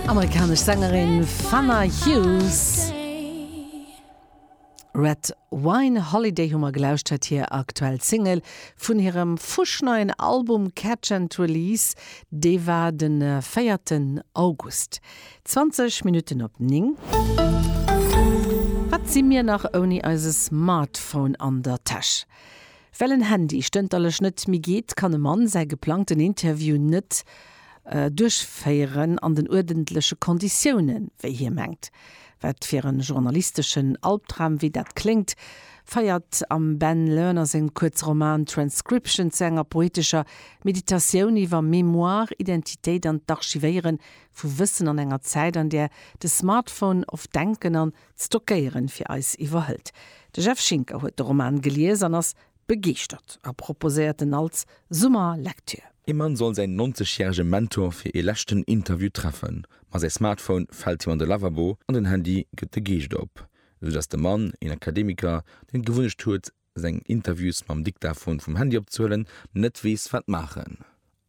Amerikanesch Sängerin Fana Hughes. Red Wine Holiday hu mer gelauschtert, hir aktuell Single vun hirem fuschneien Album Catch and Release, dee war de véierten August. 20 Minutten op 9. Wat si mir nach ouni eise Smartphone an der Täsch? Well en Handy stënterlech net méi geet, kann e Mann säi geplangten Interview net duerchféieren an den uerdentleche Konditiounen, wéi hie mengt. Wat fir e journalisteschen Albdram wéi dat kléngt, feiert am Ben Lerner sengem Kuerzroman Transcription zu enger poetescher Meditatioun iwwer Mémoire, Identitéit an d'Archivéiere vu Wëssen an enger Zäit, an där de Smartphone oft Denken an Stockéieren fir eis iwwerhëlt. De Jeff Schinker huet de Roman gelies an ass begeeschtert a proposéiert en als Summerlektür. Ee Mann soll säin 90 järege Mentor fir ee leschten Interview treffen, ma säi Smartphone fält him an de Lavabo an den Handy gëtt de Geescht op, esou datt de Mann, een Akademiker, deen d'Gewunnecht huet, seng Interviews mam Diktaphon vum Handy opzehuelen, net weess wat maachen.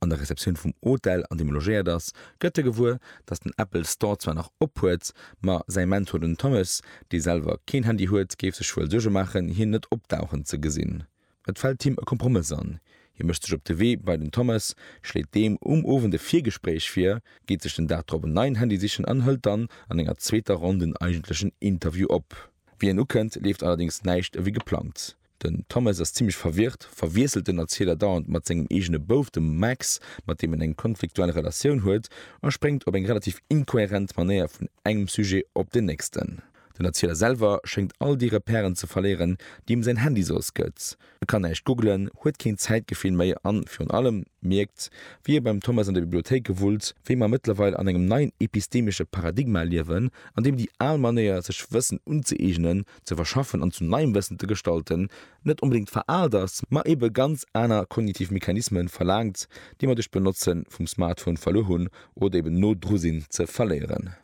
An der Receptioun vum Hotel an deem e logéiert ass, gëtt e gewuer, datt den Apple Store zwar nach op huet, ma säi Mentor den Thomas, dee selwer keen Handy huet, géif sech wuel Suerge maachen hien net opdauchen ze gesinn. Et fält him e Kompromëss an, hie mécht sech op de Wee bei den Thomas, schléit deem um Owend e Virgespréich vir, geet sech den Dag drop en neien Handy sichen an hëlt dann an enger zweeter Ronn den eigentlechen Interview op. Wéi en ukënnt, leeft allerdéngs näischt ewéi geplangt. Den Thomas ass zimmlech verwirrt, verwiesselt den Erziler dauernd mat sengem eegene Bouf, dem Max, mat deem en eng konfliktuell Relatioun huet, a spréngt op eng relativ inkohärent Manéier vun engem Sujet op den nächsten. Den Erzieler selwer schéngt all déi Repèren ze verléieren, déi em säin Handy soss gëtt. E kann näischt googelen, huet keen Zäitgefill méi an, virun allem, mierkt, wéi e beim Thomas an de Bibliothéike wullt, wéi mer mëttlerweil an engem neien epistemesche Paradigma liewen, an deem déi al Manéier, sech Wëssen unzëeegnen, ze verschaffen an zu neiem Wëssen ze gestalten, net onbedéngt veraalt ass, ma ebe ganz aner kognitiv Mechanismen verlaangt, déi mer duerch d'Benotze vum Smartphone verluer hunn oder eben no dru sinn, ze verléieren.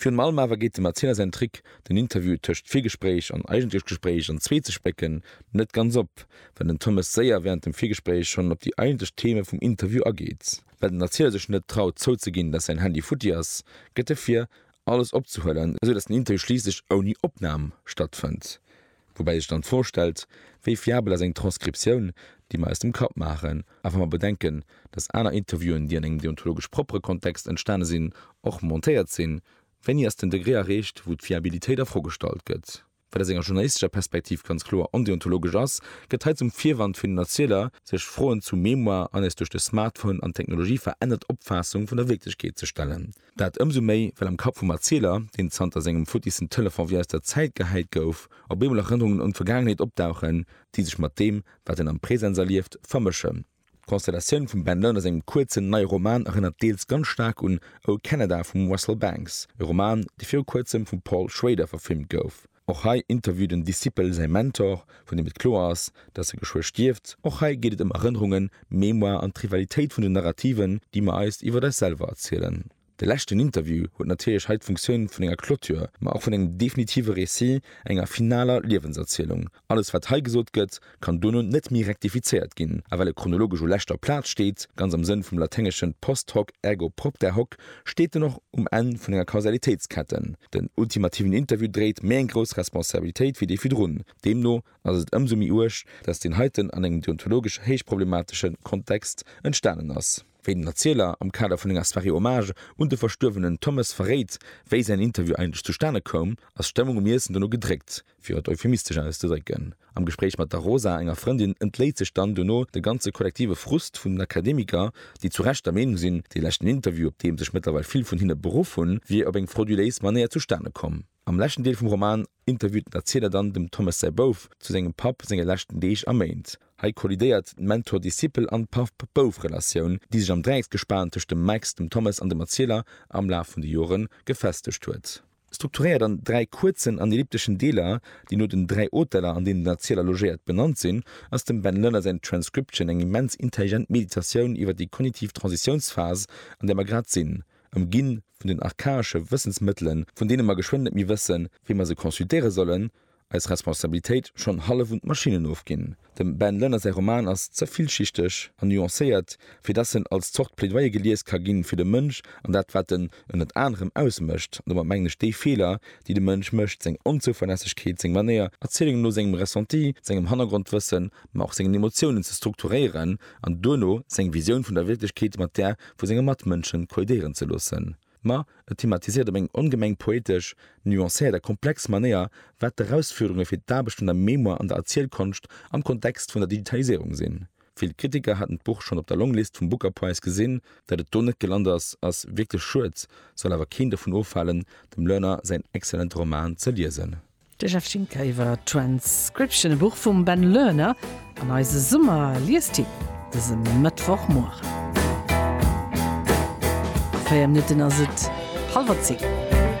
Virun allem awer geet dem Erzieler säin Trick, den Interview tëscht Virgespréich an eigentlecht Gespréich an zwee ze splécken, net ganz op, well den Thomas séier wärend dem Virgespréich schonn op déi eigentlecht Theme vum Interview ageet. Well den Erzieler sech net traut zouzeginn, dass säin Handy futti ass, gëtt e vir, alles opzehuelen, esou dass den Interview schliisslech ouni Opnam stattfënnt. Woubäi sech dann d'Fro stellt, wéi fiabel ass eng Transkriptioun, déi mer aus dem Kapp maachen, a wa mer bedenken, datt aner Interviewen, déi an engem deontologesch proppere Kontext entstane sinn, och montéiert sinn, wéini ass den Degré erreecht, wou d'Fiabilitéit a Fro gestallt gëtt? Wat aus enger journalistescher Perspektiv ganz kloer ondeontologesch ass, gëtt hei zum Virwand fir den Erzieler, sech Froen zu Mémoire an eis duerch de Smartphone an d'Technologie verännert Opfaassung vun der Wierklechkeet ze stellen. Dat ëmsou méi, well am Kapp vum Erzieler, deen zanter sengem futtissen Telefon wéi aus der Zäit gehäit gouf, op eemol Erënnerungen un d'Vergaangenheet opdauchen, déi sech mat deem, wat en am Presens erlieft, vermëschen. D'Konstellatioun vum Ben Lerners engem kuerzen, neie Roman erënnert deels ganz staark un O Canada vum Russell Banks, e Roman, dee viru kuerzem vum Paul Schrader verfilmt gouf. Och hei interviewt en Discipel säi Mentor, vun deem et kloer ass, datt e geschwë stierft. Och hei geet et ëm Erënnerungen, Mémoire an d'Rivalitéit vun den Narrativen, déi mer eis iwwer eis selwer erzielen. De leschten Interview huet natierlech hei d'Funktioun vun enger Clôture, ma och vun engem definitive Récit, enger finaler Liewenserzielung. Alles wat hei gesot gëtt, kann dono net méi rektifizéiert ginn, a well e chronologesch u leschter Plaz steet, ganz am Sënn vum Laténgeschen post hoc ergo propter hoc, steet en och um Enn vun enger Kausalitéitsketten. Den ultimativen Interview dréit méi eng grouss Responsabilitéit wéi dee virdrun. Deemno ass et ëmsou méi uerg, datt deen heiten an engem deontologesch héichproblematesche Kontext entstanen ass. Wéi den Erzieler am Kader vun enger Soirée hommage un de verstuerwenen Thommes verréit, wéi säin Interview eigentlech zustane koum, ass d'Stëmmung um Iessen dono gedréckt. Fir et euphemistesch auszedrécken, Am Gespréich mat der Rosa, enger Frëndin, entléit sech dann dono de ganze kollektive Frust vun den Akademiker, déi zu Recht der Meenung sinn, dee leschten Interview, op dee sech mëttlerweil vill vun hinne beruff hunn, wier op eng frauduléis Manéier zustane komm. Am leschten Deel vum Roman interviewt den Erzieler dann dem Thomas säi Bouf zu sengem Papp senge leschten Deeg a Méint. Hei kollidéiert d'Mentor-Discipel an Papp-Bouf-Relatioun, déi sech am Dräiecksgespan tëscht dem Max, dem Thomas an dem Erzieler am Laf vun de Jore gefestegt huet. Strukturéiert an dräi kuerzen an ellipteschen Deeler, déi no den dräi Hoteller, an deenen den Erzieler logéiert, benannt sinn, ass dem Ben Lönner säin Transcription eng immens intelligent Meditatioun iwwer déi kognitiv Transitiounsphas, an där mer grad sinn, ëmginn vun den archaesche Wëssensmëttelen, vun deene mer geschwënn net méi wëssen, wéi mer se consultéiere sollen, Eis Responsabilitéit schonn hallef un d'Maschinnen ofginn. Dem Ben Lënner säi Roman ass ze villschichteg an nuancéiert, fir dass en als Zort Plädoyer gelies ka ginn, fir de Mënsch an dat, wat en ënnert anerem ausmécht, an domat mengen ech déi Feeler, déi de Mënsch mécht, seng Onzouverlässegkeet, seng Manéier, Erzielung no sengem Ressenti, sengem Hannergrondwëssen, ma och sengen Emotiounen ze strukturéieren an duerno seng Visioun vun der Wierklechkeet mat där vu senge Matmënschen kollidéieren ze loossen. Ma et thematisiert op eng ongemeng poetesch, nuancéiert a komplex Manéier, wat d'Erausfuerderunge fir d'Aarbecht un der Mémoire an der Erzielkonscht am Kontext vun der Digitaliséierung sinn. Vill Kritiker haten d'Buch schonn op der Longlist vum Booker Prize gesinn. Dat et do net gelant ass, ass wierklech schued, soll awer keen dovun ofhalen, dem Lerner säin excellente Roman ze liesen. De Jeff Schinker iwwer Transcription, e Buch vum Ben Lerner an eise Summer-Liestipp dëse Mëttwochmueren. A 4 Minutten ass et hallwer 10.